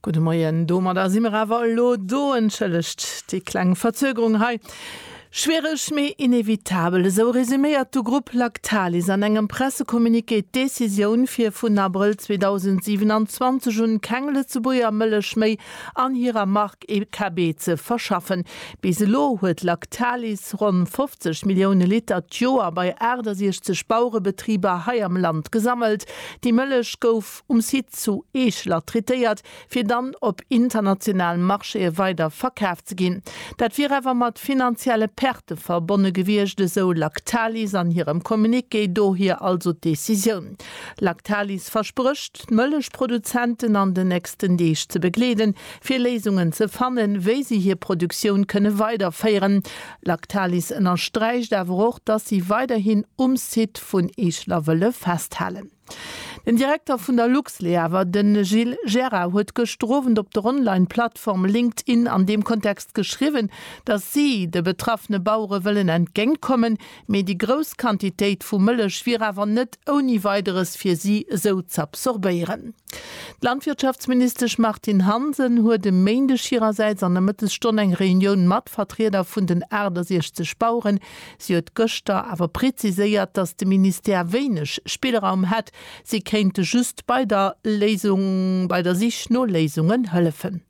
Gudde Moien, domadder si mer awer elo do. Entschëllegt déi kleng Verzögerung hei. Schwiereg, mee inevitabel, esou resuméiert de Grupp Lactalis an engem Pressecommuniqué d'Decisioun, fir vun Abrëll 2027 un keng Lëtzebuerger Mëllech méi an hirer Mark EKB ze verschaffen. Bis elo huet Lactalis ronn 50 Millioune Liter d'Joer bei 68 Baurebetriber hei am Land gesammelt. Déi Mëllech gouf um Site zu Eeschler traitéiert, fir dann op internationalen Marchéë weider verkaf ze ginn. Dat wier awer mat finanzielle Perte verbonne gewiescht, esou Lactalis an hirem Communiqué. Dohier also d'Decisioun. Lactalis versprécht. gehofft, d'Mëllechproduzenten an den nächsten Deeg ze begleeden, fir Léisungen ze fannen, wéi si hir Produktioun kënne weiderféieren. Lactalis ënnersträicht awer och, dass si weiderhin um Site vun Eeschler wëlle festhalen. Den Direkter vun der Luxleaver, de Gilles Gerard, huet gëschter Owend op der Online-Plattform LinkedIn an deem Kontext geschriwwen, dass si de betraffene Bauere wëllen entgéintkommen, Mee déi grouss Quantitéit vu Mëllech wier awer net ouni Weideres fir si esou z'absorbéieren. D'Landwirtschaftsministesch Martine Hansen huet e Méindeg hirersäits an der Mëttesstonn eng Reunioun mat Vertrieder vun den 68 Baueren. Si huet gëschter awer preziséiert, datt de Ministère wéineg Spillraum hätt. Si kéinte just bei der Léisung, bei der Sich no Léisungen hëllefen.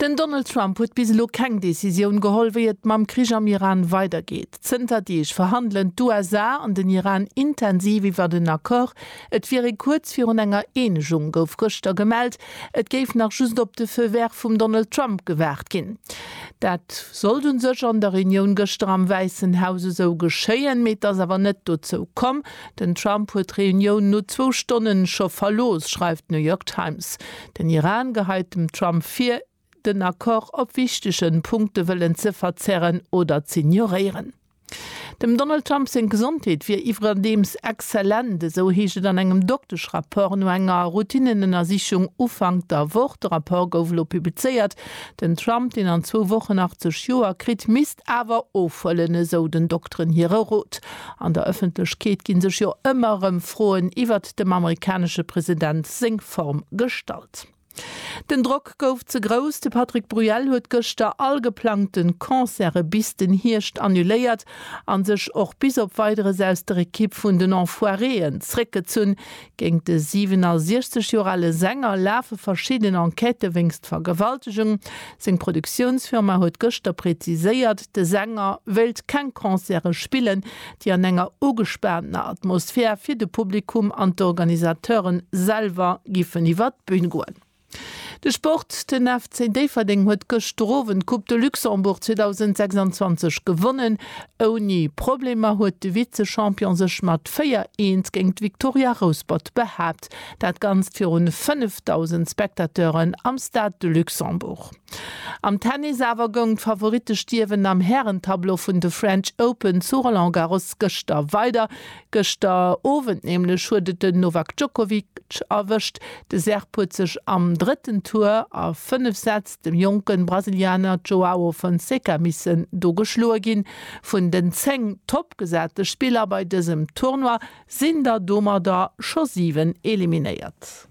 Den Donald Trump huet bis elo keng Decisioun geholl, wéi et mam Krich am Iran weidergeet. Zënter Deeg verhandelen d'USA an den Iran intensiv iwwert en Accord. Et wier ee kuerz virun enger Eenegung, gouf gëschter gemellt. Et géif nach just op de Feu vert vum Donald Trump gewaart ginn. Dat sollt u sech an der Reunioun gëschter am Wäissen Haus esou geschéien, mee et ass awer net dozou komm. Den Trump huet d'Reunioun no zwou Stonnen scho verlooss, schreift d'New York Times. Den Iran geheit dem Trump vir, den Accord op wichtege Punkte wëllen ze verzerren oder z'ignoréieren. Dem Donald Trump seng Gesondheet wier iwwerdeems exzellent, esou heescht et an engem Dokteschrapport no enger Routinnenënnersichung Ufank der Woch. De Rapport gouf elo publizéiert. Den Trump, deen an zwou Wochen 80 Joer kritt, misst awer ofhuelen, esou den Dokteren hire Rot. An der Ëffentlechkeet gi sech jo ëmmer erëm Froen iwwer dem amerikanesche President seng Form gestallt. Den Drock gouf ze grouss, de Patrick Bruel huet gëschter all geplangte Concerte bis den Hierscht annuléiert a sech och bis op Weideres aus der Ekipp vun den Enfoiréen zréckgezunn. Géint de 67 Joer ale Sänger lafe verschidden Enquêtë wéinst Vergewaltegung. Seng Produktiounsfirma huet gëschter präziséiert, de Sänger wéilt keng Concerte spillen, déi an enger ugespaantener Atmosphär fir de Publikum an d'Organisateuren selwer giffen iwwer d'Bühn goen. De Sport, den FC Déifferdeng huet gëschter Owend d'Coupe de Luxembourg 2026 gewonnen. Ouni Problemer huet de Vize-Champion sech mat 4, 1 géint d'Victoria Rouspert behaapt. Dat ganzt virun 5.000 Spectateuren am Stade de Luxembourg. Am Tennis awer goung d'Favoritte Stierwen am Hären-Tableau vun de French Open zu Roland Garros gëschter weider. Gëschter Owend nämlech huet et den Novak Djokovic erwëscht. De Serb huet sech am drëtten Tour a 5 Sätz dem jonke Brasilianer Joao Fonseca missen do geschloe ginn. Vun den 10 toppgesate Spiller bei dësem Tournoi sinn der domadder scho 7 eliminéiert.